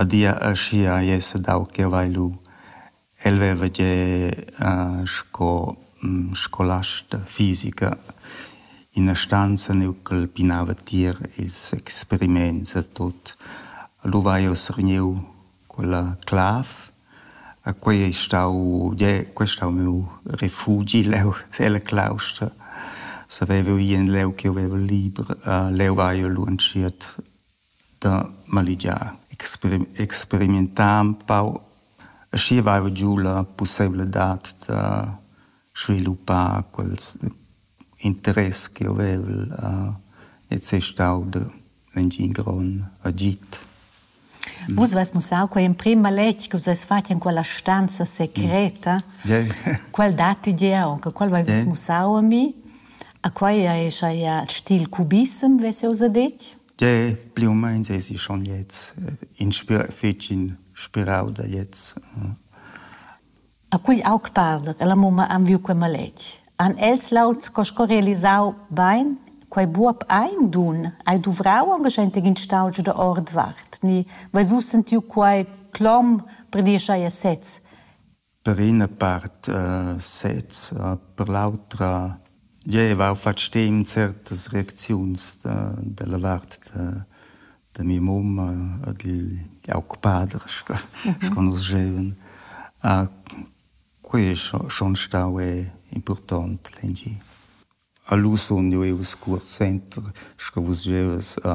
adia aschia ei sedau ch'jeu vai lu. El veva gie sco scolast fisica ina stanza neu ch'el pinava tier ils experiments e tut. Lu vai ussa vegniu quella clav e quei ei stau gie quei ei stau miu refugi leu ella claustra. Saveva gie leu ch'jeu veva liber. Leu vai jeu lu entschiet da maligiar. Experimentar empau, aschi vaiva giu la pusseivladad da sviluppar quels interess che hovevel ed sei stau d'engin grond agid. Vus vus mussau quei emprim maletg che vus havess fatg en quella stanza secreta. Quel datti gia aunc, quel vus mussau a mi. A quai è chajà il stil cubissem, ves jau sa detg? Dè, pli u main èsi schon gliez inspirà, fitg inspirau da gliez. A quegl aug pader e la mumma han viu quei maletg. Han els laud sco sco realisau bein quei buob ein dun? Hai duvrau aunc schenteg in staultsch da ordvart? Ni veis vus sentiu quei clom per dir schai a sez? per ina part sez, per l'autra gieva our fat stim certas reacziuns da della vart da da mia mumma ed igl aug pader sco sco nus gievan. Quei es schon stau impurtont dengi. A lu sun jeu ius cuort senter, sco vus gievas a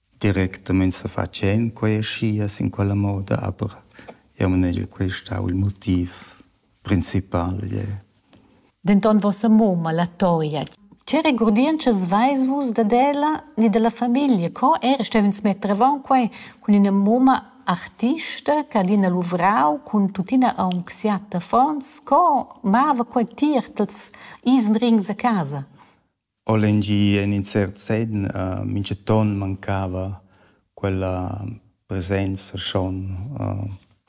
Directamein sefatschend quei aschia sin quella moda, aber jeu manegel quei stau il motiv principal jeu. Denton vossa mumma, la Toia, che regurdientschas veis vus dad ella ni dalla famiglia? Co era stevens metter avon quei cun ina mumma artista che ha adina luvrau cun tuttina aunc siat affons? Co mava quei tier tals isenrings a casa? O lengi en in cert senn minchaton mancava quella presenza schon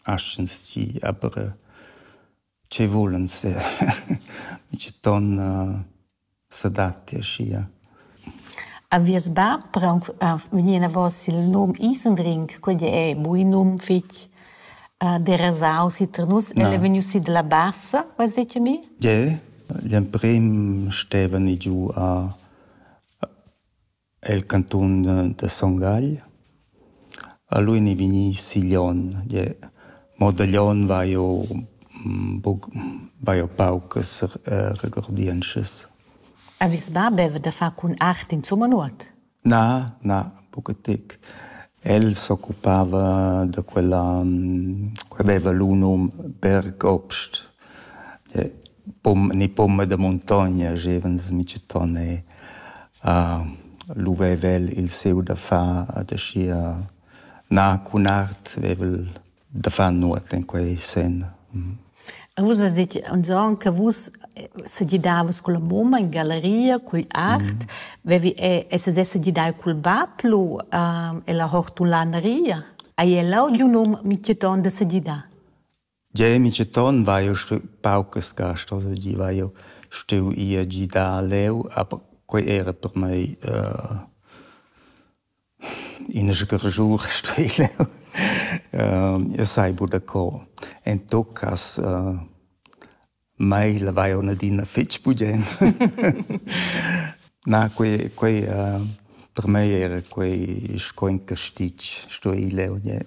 aschens tgi aber che vulens minchaton s'adatti aschia. A vies bab per aunc vegnir enavos il num Isendring, quei è buc in num fetg derasau si tar nus. El è vegnius sid la Bassa, veis detg a mi? Gie. Gl'emprem stevani giu a el cantun da Son Gagl. A lui n'ei vegni Siglion. Gie, mo da Glion vai jeu buc, vai jeu paucas regordientschas. Avis ba beva da far cun art insumma nuot? Na, na, buca tec. El s'occupava da quella, quella veva lu num Bergobst, ni pomma da muntogna gevans miceton e lu veva el il siu da far ad aschia na cun art vevel da far nuot in quei sen. E vus has detg anzon che vus se gidavas con la mumma in galleria cul art, vevi e se se gidai cul bab lu e la hortulaneria. Hai el audio num Miceton da se gidar? Ja, Miceton va io stu paucas gast, also gi va io stu ia gidar leu, aber quei era per mei uh, Ina sgarschur stui jeu. Jeu sai buca co. En tot cass mai lavai aunc adina fetg bugen. Na, quei quei per mei era quei sco in castitg, stui leu gnir.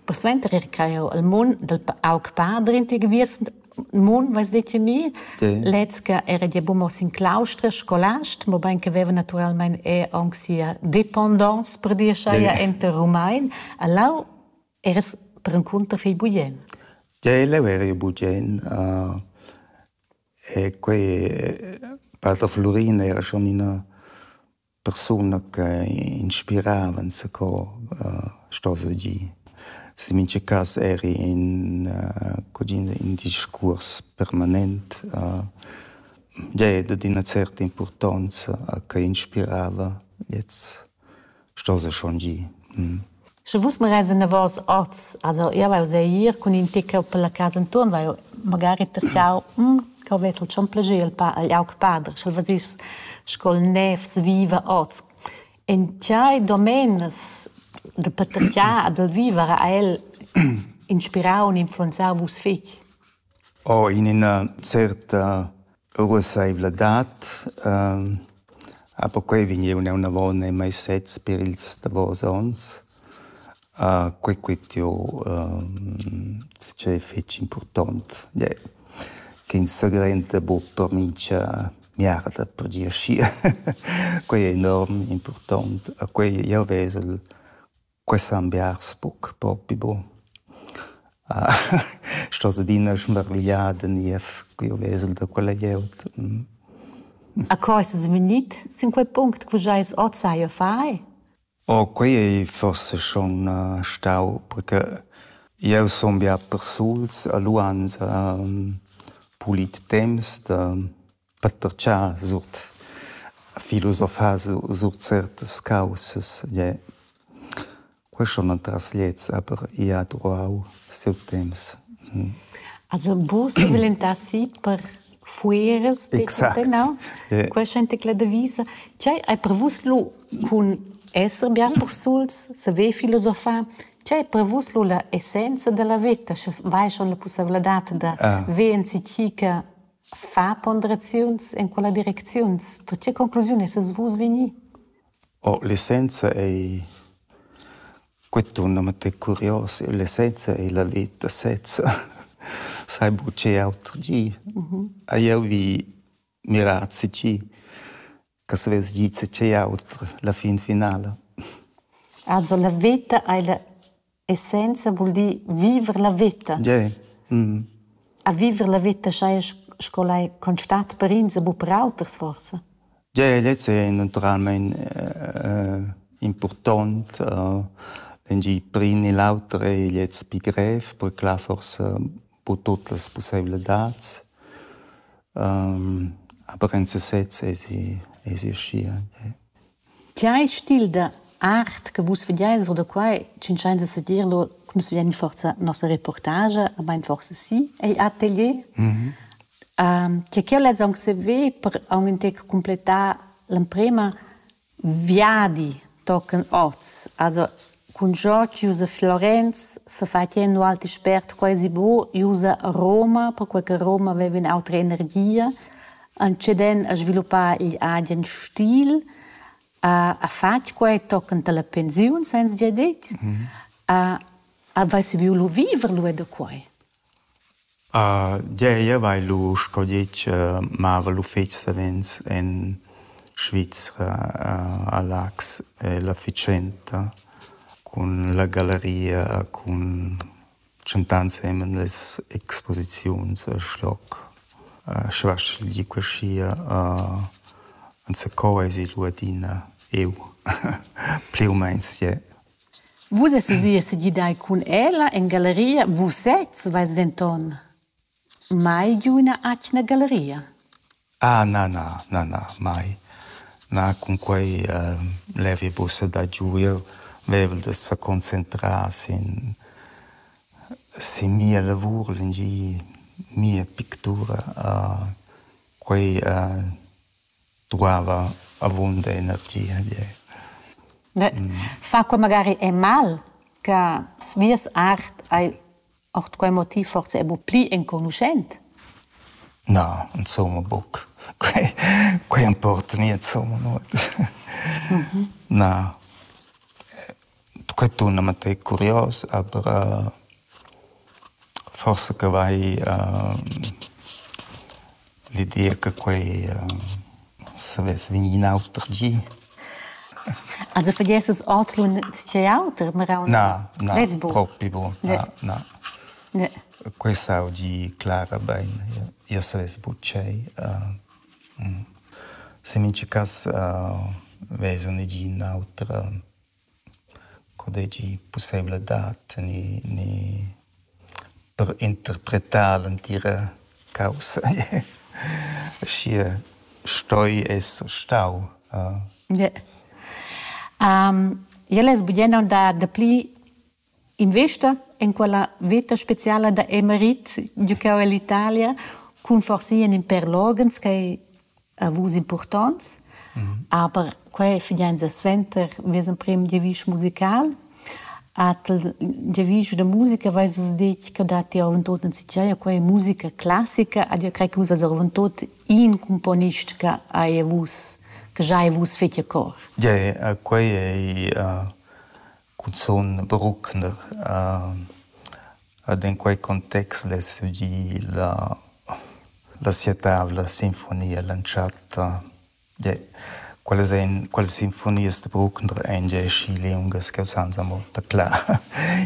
Persuenter era quai jau al mun dal aug padrin ti giviers mun, vais dir ti mi. Lez che era gia buca mo sin claustra, scolast, mobein che veva naturalmein er aunc sia dependance, per dir schai, enter Rumein. E lau eras perencunter fei bugen. Ge, leu eri bugen. Uh, e quei, eh, pater Florina era schon ina Persuna che inspirava enzaco sto surgir. Ins en mintga cas eri in cugin in discuors permanent. Gie, dad ina certa impurtonza che inspirava. Gliez sto se schon gir. Sche vus magari enavos oz, also jeu vai uss ir cun in tec per la casa entuorn, vai magari tertgau, cheu vess el schon plascher il pa- igl aug pader, sch'el vesess sco'l nevs viva oz. En tiai domenas da patertgar e dal viver ha el inspirau e influenzau vus fetg. Ho in üna certa ruossaivladad, a perquai vegniun eunavant eir meis sets per ils davos ons. Quai quist jo tschè fich important, yeah, ch'ins s'agrenta bod per mincha miarda per gir schi. Quai è enorm important, a quai jau vezel Quest san biars buc propi buc. Sto adina smirligliar da niev ch'jeu vesel da quella glieud. A co eis vus vegnit sin quei punct che vus eis oz sai a far? Oh, quei ei forse schon stau, perché jeu sun bia persuls e lu ans pulit temps da Peter Tscha suot filosofar su suot certas caussas, gie. Questo non tras gliez, aber i ha durau siu temps. Also vus velentassi per fueras de exact. no? Yeah. Questa gente che la devisa, c'è hai per vus lu cun esser bien persuls, se ve filosofar, c'è per vus lu la essenza della vita, sche vai schon la possibilità da ah. ve en cica Far ponderaziuns en quella direcziuns, da tge conclusiun essas vus vegni? Oh, l'essenza ei quei tun amate curios, l'essenza ei la veta sezza. Sai buca auter gi. Hai jeu vi mirar tgi che savess dir tgei auter la fin finala. Also la veta ei la essenza vul dir viver la veta. Yeah. Mm. A viver la veta schai sco lai constat per ins e bu per auters forsa. Yeah, lezza è naturalmein äh, important. Äh, wenn die primi l'auter è jetzt pi grev, per clar forsa bu tut las possibilitads. Um, aber in sesez è si, è si schier. Yeah. Tgei stil da art che vus vegiais or da quai tschintschains a sedir lur, che nus vegian forsa nossa reportagia, main forsa sì, ei atelier. che ch'jeu lez aunc saver per aunc in tec cumplettar l'emprema viadi tochen oz. Also Cun cho chi usa Florenz s'ha fat gnir ün alt expert quasi bo i usa Roma perquai che Roma veva ün'autra energia antscheden a sviluppar igl agen stil, ha fat quai tochend alla pensiun sainza dir det, ha vess vieu lu viver lu e da quai. Gei, jeu vai lu sco ditg mava l'uffeci savens en Svizra a Laax e la fatschenta cun la galleria cun tschentà ensemen las exposiziuns el schloc. Sche vas ch'el di quesia enzacò eisi lu adina eu pli u meins ie. Vus essas ì e segidai cun ella en galeria. Vus sezs veis denton mai giu ina atgna galeria. Ah na, na, na, na, mai. Na, cunquei uh, levi buca da giu. Jeu vevel da seconcentrar sin, sin mia lavur, l'engi, mia pictura. Uh, quei uh, duava avunda energia. Yeah. Fa quei magari è mal che svias art hai ord quei motiv forse è bu pli enconuschent? Na, insomma buc. Quei, quei importa nie insomma nuot. Mhm. Na. Quei tuna ma tei curios, aber uh, Forsa che vai l'ideia che quei savess vegnir in auter gi. Also vergiessas ordlun tgei auter meraun? Na, na, propi buc. Na, na. Quei sau gi Clara bein. Jeu savess buc tschei. Se mincha cass vesa negin auter. Co deigi pusseivel dad tener ni per interpretar l'entira caussa aschia stoi esser stau. Jel es bugen da dapli Investa en quella veta speciala da Emerit giucau ell'Italia cun forsa in in per loghens ch'ei a vus impurtonts, aber quei ei fidanza suenter vies emprem giavisch musical. Atel giavisch da musica veis vus detg che dat ti avontot enzatgei a quei musica classica, ad io crei che vus eis avontot in cumponist che ei a vus, che giai a vus fetg a cor. Gie, quei ei Cunzun bruckner. Ed in quei context less udir la la sia tavla sinfonia l'entschatta. Gie, quellas ein, quellas sinfonias da Bruckner ein gie aschi liungas che usanza mo da clar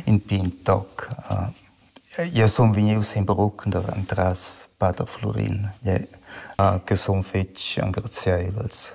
in pign toc. Jeu sun vegnius sin Bruckner entras pater Flurin, che sun fetg engraziaivels.